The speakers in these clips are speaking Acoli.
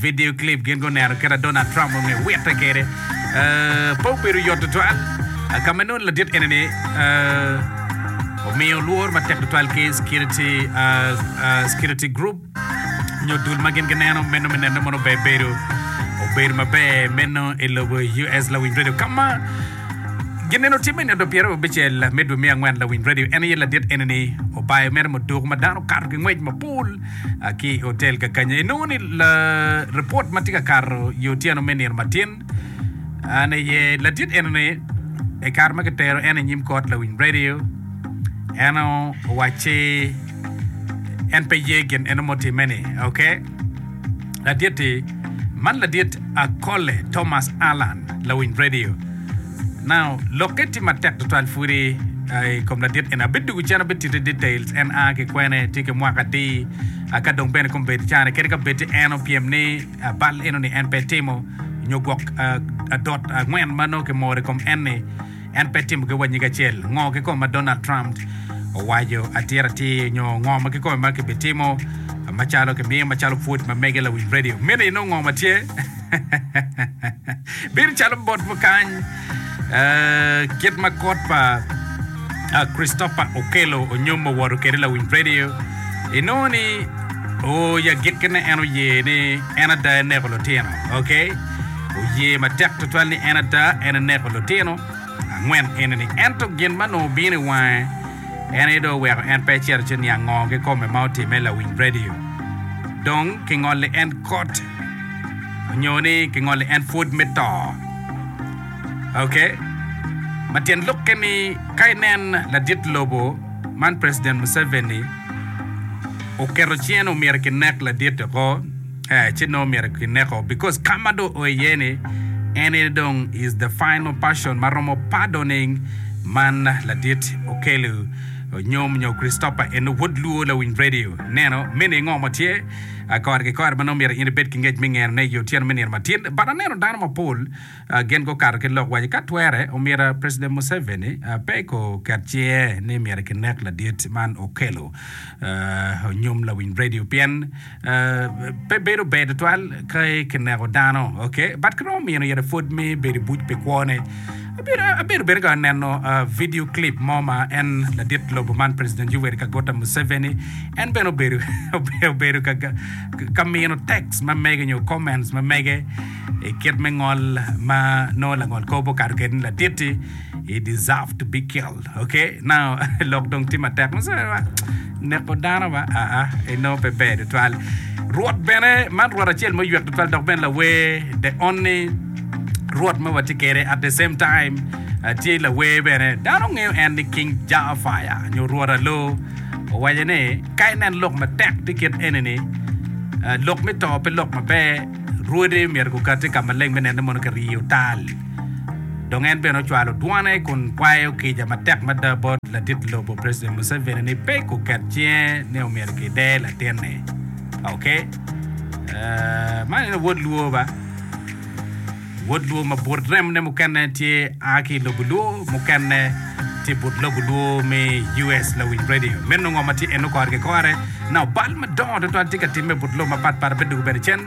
Vidio clip, Gin guneno kit ma Donald Trump ongeyo witte kwede. Pe obedo yot tutwal ka ma nongo ladit eni omiyo lworo matek tutwal ki security group nyo dul ma gin gineno meno me neno mono ber bedo obedo maber meno i lobo US Lawiny Radio ka ma gineno timme nyo do pyero abicel me dwe me angwen Lawiny Radio en aye ladit eni obayo mere muduku ma dano okato ki ngwec mapol ki i otel kakanya. Inongo ni report ma tye ka kato i otyeno me nino matin an aye ladit enoni i kare ma kitero en i nyim kot lawiny radio en owacci en pe ye gin eno mutimme-ni, okay? Ladit-ti man ladit Akole Thomas Allan, lawiny radio. Now, lokke tye matek tutwal pwodi i kom ladit eni. Abed dwogo cen abed titte details, en a ki kwene, tye ki mwaka adi, aka dong bene kong bed carne, kadi ka bed en opyem ni bal eno ni en pe etimo, nyo gwok adot angwen ma nongo kimoro i kom en-ni. en pe timogi wa nyig acel. Ngo kikome ma Donald Trump owaco atir atir nyo ngo ma kikome ma kibitimo macalo kimiyo macalo pwod ma mege lawic radio? Miti inong ngo ma tye bino calo bot mo kany kit ma kot pa Christopher Okello onyo ma owoto kede lawic radio inongo ni o ya gikkine en oye ni en ada eneko lutino. Okay? oye matek tutwal ni en ada en eneko lutino angwen eni-ni. Ento gin ma nongo obino i wange en aye dong oweko en pe ecito ci niang ngo kikome ma otimme. Lawiny radio dong kingoli en kot onyo ni kingoli en pwod me to. Ok. Ma tyen lok ke ni ka inen ladit lobo man President Museveni oketo cing ni omyero kinek ladit-ti ko. eh ci nongo myero ki neko because ka ma dong o iye ni en aye dong is the final person ma romo pardoning man ladit okelu nyom nyo Christopher eno wod luo lawiny radio neno me ni ngo mo tye ah, kore ki kore ma nongo myero in ibed ki ngec me ngeno ne i otyeno me nino ma tin but aneno dano ma pol ah, gin go kato ki lok waco ka twere omyero ah, president Museveni ah, pe ko ket cinge ni myero ki nek ladit man okelu ah, nyom lawiny radio pien Pe bedo ber tutwal ka kineko dano, but kiromo mino ite pwod me bedo i buc pi kwone. Abedo bene ka neno video clip mo ma en ladit lobo man President Yoweri Kaguta Museveni en bene obedo ka mino text ma mege nyo comments ma mege i kit me ngol ma nongo langol kor pe okato kwede ni laditi. He deserve to be killed. Okay? Now, lok dong tye matek. Ma sa ba, neko dano ba, aa, eno pe ber tutwal. Rwot bene, man rwot acel ma oywek tutwal dok bene lawer, the only rwot ma watye kere at the same time uh, tye lawer bene dano ngeyo en ni king jafaya nyo rwot alo owaco ni ka inen lok matek tye kit eni ni uh, lok me to pe lok maber rwode myero gukati ka maleng me nene mono kiriyo tal Dong en bene ocwalo dwone kun kwayo kica matek mada bot latit lobo President Museveni ni pe kuket cinge ni omyero kider latinne. Ok. Uh, man en wod luo ba? Wod luo ma but remne mukene tye a ki lobo luo, mukene tye but lobo luo me US lawiny radio. Meno ngo ma tye eno kore ki kore na obal madongo tutwal tye ka timme but lobo mapat pat abedo doko bene cen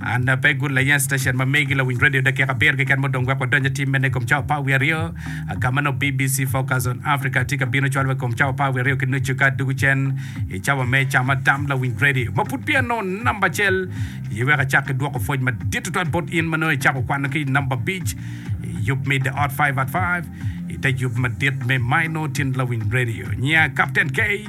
An a pe good layen station ma megi lawiny radio dakika abiro keken ma odong wek wadony atim mene i kom cawa pa wiye aryo. Ka ma nongo BBC Focus on Africa tye ka bino cwalo wa i kom cawa pa wiye aryo ki nucu ka dugu cen i cawa me ca ma tam lawiny radio ma pud peya nongo namba acel i wek acak ki dwoko pwoc madit tutwal bot in ma nongo icako kwano ki i namba abic i yub me The Ot 5 at 5 i te yub madit me Maino Tin Lawiny Radio. Nya Captain K.